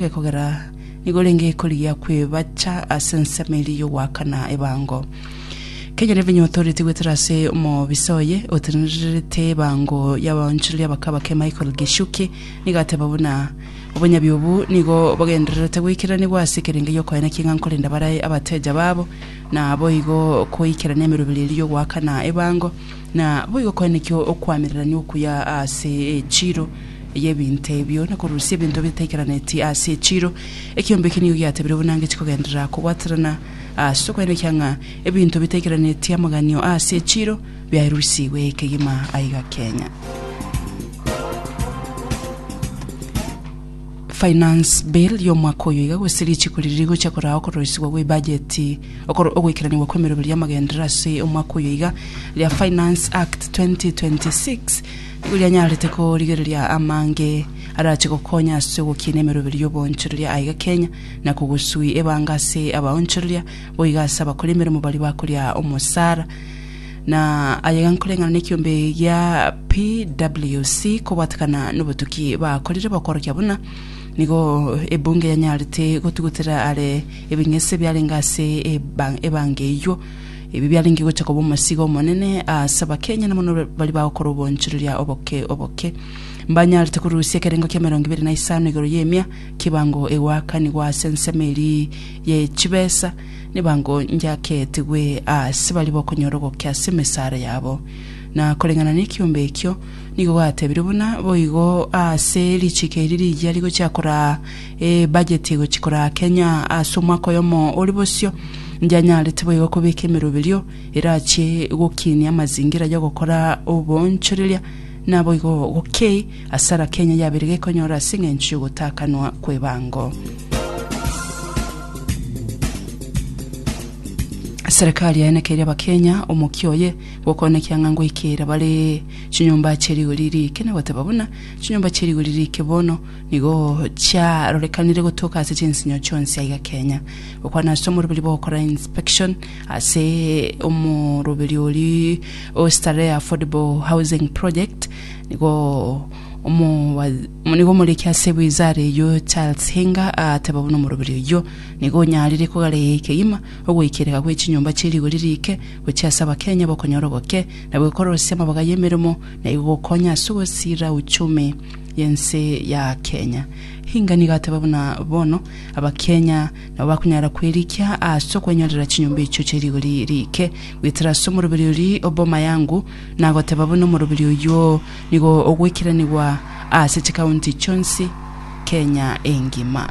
Ekogera nigo renge ekorigia kwebacha ase ensemo eria y'ogoakana ebango. Kenya Revenue Authority gwetera ase omobisa oye otenenerete ebango y'abaonchoreria bakabake Michael Gichuki nigo ateba buna obonyabi obu nigo bogendererete goikeranigwa ase ekerenge gi'okoena king'a nkorenda bare abateja babo na boigo koikerania emeroberi eria y'ogoakana ebango Na boigo koeneki okoamererania okuya ase echiiro y'ebinto ebio, na korusia ebinto ebitaikaraneti ase echiiro. Ekiombe eke nigo giatebire buna ngechi kogenderera kobwaterana ase okoenekia ng'a ebinto bitaikaraneti amaganio ase echiiro biaerusigwe kegima aiga Kenya. Finance Bill y'omwaka oyo iga gose richiko riria rigochia korao okoroisigwa gwe ebajeti Okorwa ogoikeranigwa kw'emeroberio y'amagenderero ase omwaka oyo iga, ria Finance Act 2026 nigo rianyarete korigereria amange arache gokonya ase ogokiina emeroberio y'oboonchoreria aiga Kenya na kogosui ebanga ase abaonchoreria boiga ase abakori emeremo baria bakoria omosara na ayega nkoreng'ana nekiombe gia PWC kobwatekana nobotuki bakorire bokorokia buna nigo ebunge yanyarete gotugutera are Ebing'ese biarenge ase ebango eyio. Ebi biarenge gocha koba omosigo omonene ase abakenya na mono baria bagokora obonchoreria oboke oboke. Mbanyarete korusia ekerengo kia emerongo ibere na isano igoro y'emia kibango egoakanigwa ase ensemo eria ye chibesa nebango njaketigwe ase baria bokonyora ogoke ase emesara yabo. Na koreng'ana nekiombe ekio nigo gatebirwe buna boigo ase richiiko eri rigiya rigochia koraa Ebajeti egochia korakenya ase omwaka oyomo ore bosio, ndianyarete boigo kobeka emeroberio erachie gokinia amazingira y'ogokora oboonchoreria, naboigo gokei asara Kenya yabeire gekonyora ase eng'encho y'ogotakanwa kw'ebango. Serikali yaenekeire Abakenya omokia oye gokonekia ng'a ngoikera bare chinyomba chie rigori rike na goteba buna chinyomba chie rigori rike bono Nigo chiarorekanire gotoka ase chinsinyo chionsi aiga kenya, gokwana ase omoroberi bogokora inspection ase omoroberi oria o Starehe Affordable Housing Project, nigo omowa- nigo omoriki ase wizara eyio Charles Hinga agateba buna omoroberi oyio nigo onyarire kogaraiga ekegima ogoikereka gwe chinyomba chie rigori rike gochia ase abakenya bokonyora oboke na bwekorosia amabaga y'emeremo na igo gokonya ase ogosira uchumi y'ense ya Kenya. Hinga nigo ateba buna bono Abakenya nabo bakonyara kwerikia ase okwenyorera chinyomba echio chie rigori riike. Goetera ase omoroberi oria o Bomayangu nagoteba buna omoroberi oyio nigo ogweikiranigwa ase chikaunti chionsi Kenya engima.